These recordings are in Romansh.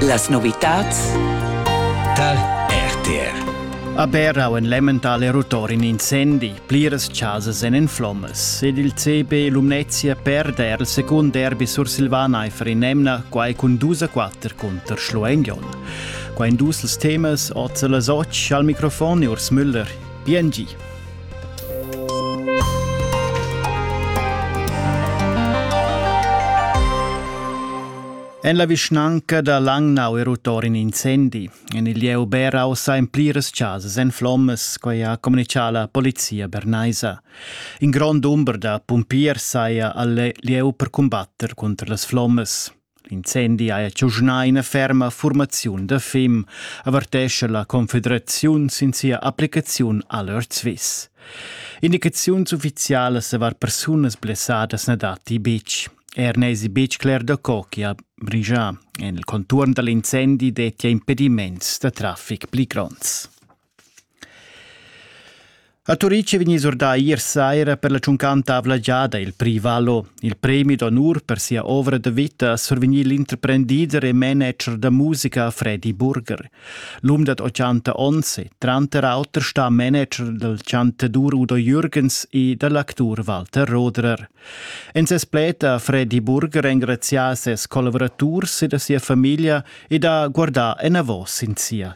Las novitats tal RTR. A Berau en Lemmental è rutor in incendi. Pliras chasas èn en flommas ed il CB Lumnezia perde er il secund derby sursilvan aifer in emna, quai cun dus a quatter cunter Schluengion. Qua en dus temas, oz las otg, al microfon Urs Müller. PNG. En la vischnanca da Langnau è rut in incendi. En il lieu Beraus ha en pliras chasas en flommas, quai ha communichà la polizia bernaisa. In grond dumber da pumpiers saja al lieu per cumbatter cunter las flommas. L'incendi haja giugnà ina ferma furmaziun da fim, avertescha la Confederaziun sin sia applicaziun a l'Earth Swiss. Indicaziuns uffizialas davart persunas blessadas na datti betg. Er n'èsi betg cler da co chi ha brigià. En il conturn da l'incendi dettia impediments da traffic pli gronds. A Turic è vegnì surdà ier saira per la tschuncanta avla giada il Prix Valo. Il premi d'onur per sia ovra da vita ha survegnì l'interprendider e manager da musica Freddy Burger. L'um dad 80 onns è tranter auter stà manager dal chantadur Udo Jürgens e da l'actur Walter Roderer. En ses pled ha Freddy Burger engrazià ses collavuraturs e da sia famiglia ed ha guardà enavos sin sia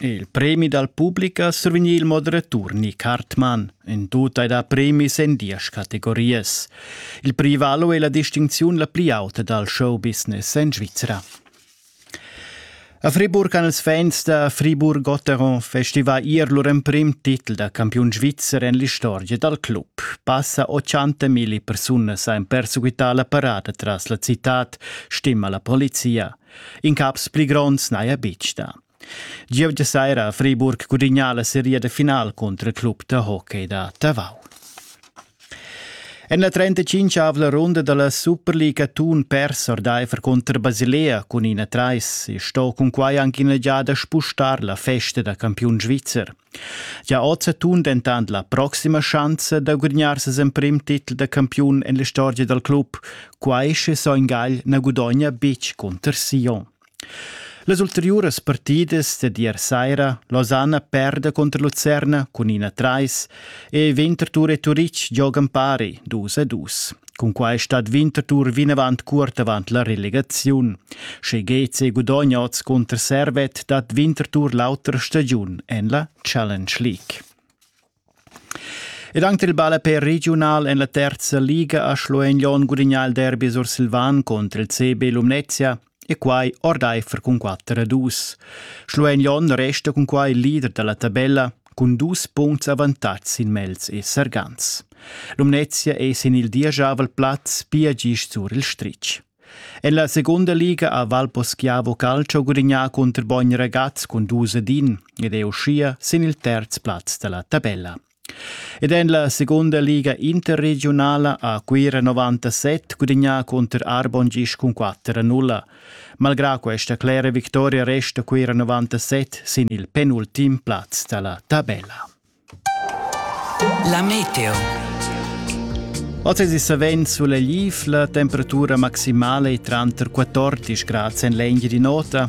Il premi dal public ha survegnì il moderatur Nick Hartmann. In tut hai dà premis en diesch categorias. Il prix valo è la distincziun la pli auta dal showbusiness en Svizra. A Friburg han ils fans da Fribourg-Gotteron festivà ier lur emprim titel da campiun svizzer en l'istorgia dal club. Passa 80.000 persunas han perseguità la parada tras la citad, stima la polizia. Incaps pli gronds n'haja betg dà. Gievgia saira a Friburg gudignà la seria de final cunter il club da hockey da Tavau. En la 35-avla runda dalla Superliga Thun pers ordaifer cunter Basilea cun ina trais e sto cunquai anche ina giada spustar la festa da campiun svizzer. Ja oz tun dentant la proxima schanza da gudagnar ses emprim titel da campiun en l'istorgia dal club, quai sche Soin Gagl na gudogna betg cunter Sion. Las ulteriuras partidas dad ier saira Lausanne perde contro Lucerna cun 1-3 e Winterthur e Turic giogan pari 2-2. Cun quai stat Winterthur vinavant curt avant la relegaziun. Sche GC gudogna oz cunter Servet, dat Winterthur l'autra stagiun en la Challenge League. Ed anche il ballapè regional en la terza liga a Schlueignon gudigna il derby sursilvan contro il CB Lumnezia E quai ordaifer cun quatter a dus. Schluein Jon resta cun quai leader dalla tabella cun dus puncts avantatgs sin Mels e Sargans. Lumnezia è sin il dieschavel plaz pia gist sur il stritg. En la seconda liga ha Valposchiavo Calcio gudignà contro Bogn Ragaz cun dus ad in ed è uschia sin il terz plaz da la tabella. Ed en la segunda liga interregiunala ha Cuira 97 gudagnà cunter Arbon gist cun 4 a 0. Malgrà questa clera victoria resta Cuira 97 sin il penultim plaz da la tabella. La meteo. Oz è savens sulla lifla, temperatura maximale è tranter 14 grad en l'engine di nota,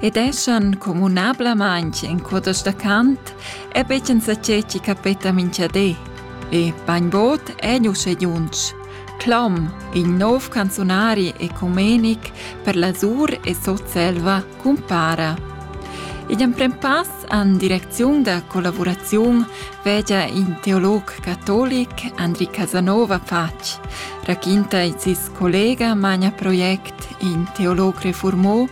ed eschan communablamaintg in cudas da cant e betschen saceci capeta minchadé. E bainbod è uschè junsch. Clom, il nov canzunari ecumenic per la Zur e Sotselva, cumpara. Igl emprem pass an direcziun da collaboraziun vegia in teolog catolic Andri Casanova Fac, raquinta il sis collega Magna Project in teolog reformò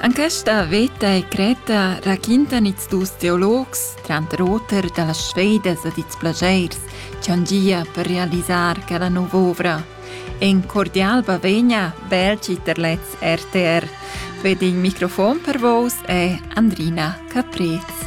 En questa veta e Creta raquintan ils dus teologs, tranter auter da las sfedas ed ils plaschairs che han gia per realisar quella nova ovra. In cordial bavegna, belci per lez RTR. Ved il microfon per vos e Andrina Caprez.